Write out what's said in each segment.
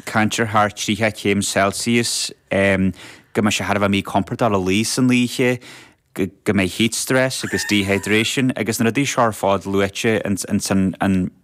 Caint ar thar 30 céim Celsius, go mbeidh sé thar a bheith míchompordach le luí san oíche, go mbeidh heat stress agus dehydration agus na rudaí seo ar fad luaite ansan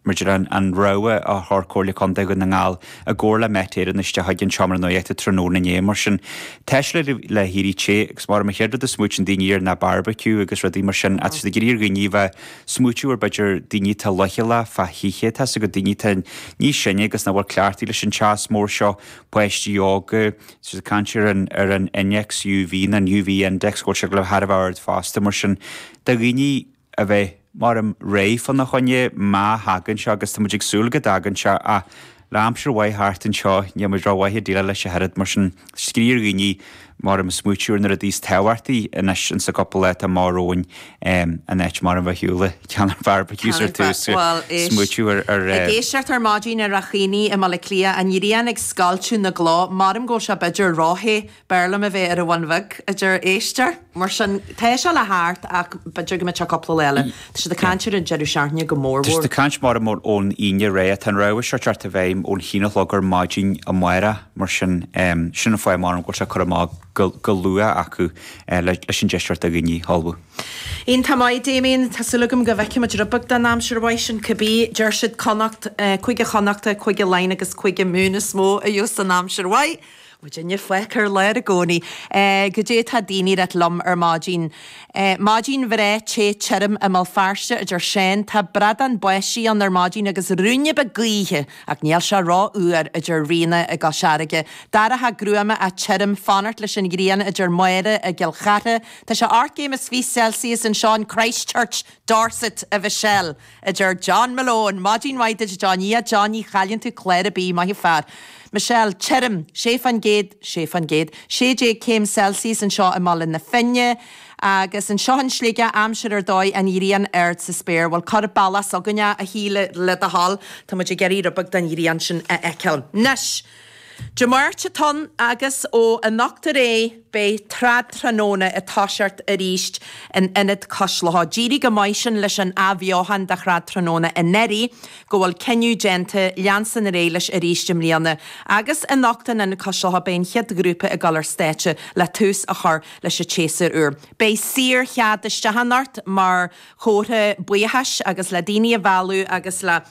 maidir le an rabhadh a chuir Comhairle Contae Dhún na nGall i gcomhar le Met Éireann isteach chuig an Seomra Nuachta tráthnóna inné. Mar sin tá sé le héirí te agus maram an chéad rud a smaoiteann daoine air ná barbecue agus rudaí mar sin, ach tá siad ag iarraidh ar dhaoine a bheith smaoitiú ar b'fhéidir daoine atá leochaileach fa hoíche tá a fhios agat daoine atá níos sine agus nach bhfuil cleachtaithe leis an teas mór seo páistí óga is ag caint ar an ar an innéacs UV nó an UV index go bhfuil sé go léir thar a bheith ard fosta mar sin do dhaoine a bheith maram réidh fá na choinne má thagann sé agus tá muid ag súil go dtagann sé ach Le aimsir mhaith thart anseo, níl muid rómhaith ag déileáil leis ach oiread, mar sin. Is ag iarraidh ar dhaoine, maram, smaoitiú ar na rudaí is tábhachtaí, anois ins an gcupla lá atá amach romhainn, in áit maram a bheith ar shiúl ag ceannach barbecues ar tús, smaoitiú air. Ag éisteacht ar maidin ar a haoine i mBaile Átha Cliath, an ghrian ag scoilteadh na gcloch, maram go bhfuil sé b'fheidir róthe B'fhearr liom a bheith ar an Bhun Bheag, a deir éisteoir. Mar sin, tá seo le teacht ach b'fhéidir go mbeadh cúpla lá eile. Tá siad ag caint ar an deireadh seachtaine go mór mhór. Tá siad ag caint maram ón Aoine ar aghaidh. Tá an rabhadh seo ag teacht i bhfeidhm ón haon a chlog ar maidin amárach, mar sin sin an fáth maram go bhfuil sé curtha amach go luath acu leis an deis a thabhairt do dhaoine ullmhú. Iontach maith, Damien. Tá súil agam go bhfeicfimid rud beag den aimsir mhaith sin cibé. Deir siad Connacht, Cúige Chonnacht, Cúige Laighean agus Cúige Mumhan is mó a gheobhas an aimsir mhaith. Muidinne fágtha ar lár i gcónaí. Goidé tá daoine ag ráit liom ar maidin? Maidin bhreá te tirim i mBéal Feirste, a deir Seán. Tá brádán báistí ann ar maidin agus ruainne beag gaoithe, ach níl sé ró-fhuar, a deir Ríona i gCois Fharraige. Dorcha gruama ach tirim, ag fanacht leis an ghrian, a deir Máire i gCill Chartha. Tá sé ocht gcéim is fiche Celsius anseo in Christchurch, Dorset, a Mhichelle! a deir John Malone. Maidin mhaith duit a John. Yeah, John, ní chailleann tú clár ar bith, maith an fear. Michelle, Tirim, sé faoin gcéad, sé faoin gcéad, sé déag céim Celsius anseo i mBaile na Finne. Agus anseo in Sligeach, aimsir ar dóigh, an ghrian ard sa spéir. Bhuel, cuir an bealach s'againne é, a Shíle, le do thoil. Tá muid ag iarraidh rud beag den ghrian sin a fheiceáil. Nois! Dé Máirt atá ann agus ó anocht ar aghaidh beidh Trad Tráthnóna ag toiseacht arís in Ionad Cois Locha. D'éirigh chomh maith sin leis an athbheochain de Trad Tráthnóna anuraidh go bhfuil cinneadh déanta leanstan ar aghaidh leis arís i mbliana agus anocht in Ionad Cois Locha beidh an chéad ghrúpa ag dul ar stáitse le tús a chur leis an tséasúr úr. Beidh saor chead isteach anocht mar chomhartha buíochais agus le daoine a mhealladh agus le.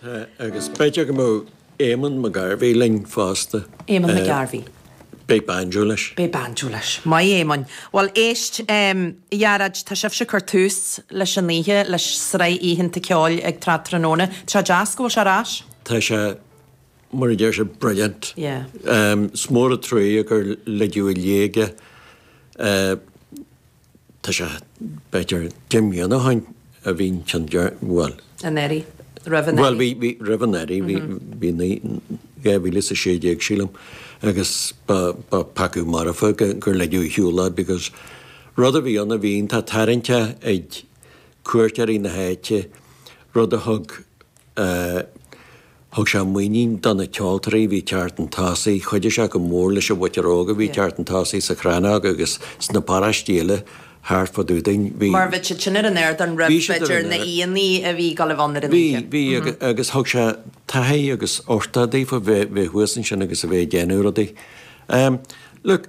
Tá, agus b'fhéidir go mbeadh Éamonn McGarvey linn fosta. Éamonn McGarvey. Beidh banjo leis. Beidh banjo leis. Maith Éamonn. Bhuel, éist, a Ghearóid, tá sibhse ag cur tús leis anocht le sraith oícheanta ceoil ag Trad Tráthnóna. Tá sé deas go bhfuil sé ar ais. Tá sé, mar a deir siad, brilliant. Yeah. Is mór an truaighe gur ligeadh i léig é. Tá sé, b'fhéidir, deich mbliana ó shin a bhí an ceann deireanach, bhuel. An Earraigh, roimh an Earraigh. Bhuel, bhí, roimh an Earraigh, bhí, bhí naoi, 2016 sílim agus ba, ba pheacadh marfa gur ligeadh ar shiúl é because rud a bhí ann, a bhí iontach tarraingteach ag cuairteoirí na háite, rud a thug, a thug sé muinín do na ceoltóirí a bhí ag teacht chun tosaigh, chuidigh sé go mór leis an mhuintir óg a bhí ag teacht chun tosaigh sa Chrannóg agus sna paráistí eile thart fá dtaobh dúinn. Bhí. mar a bhí siad sin ar an ardán roimh Bhí siad ar b'fhéidir an na air. haíonna a bhí ag dul a bheith ann ar an Bhí, oíche. bhí agus, agus thug sé taithí agus uchtach daofa bheith, bheith thuas ansin agus a bheith ag déanamh rudaí. Look,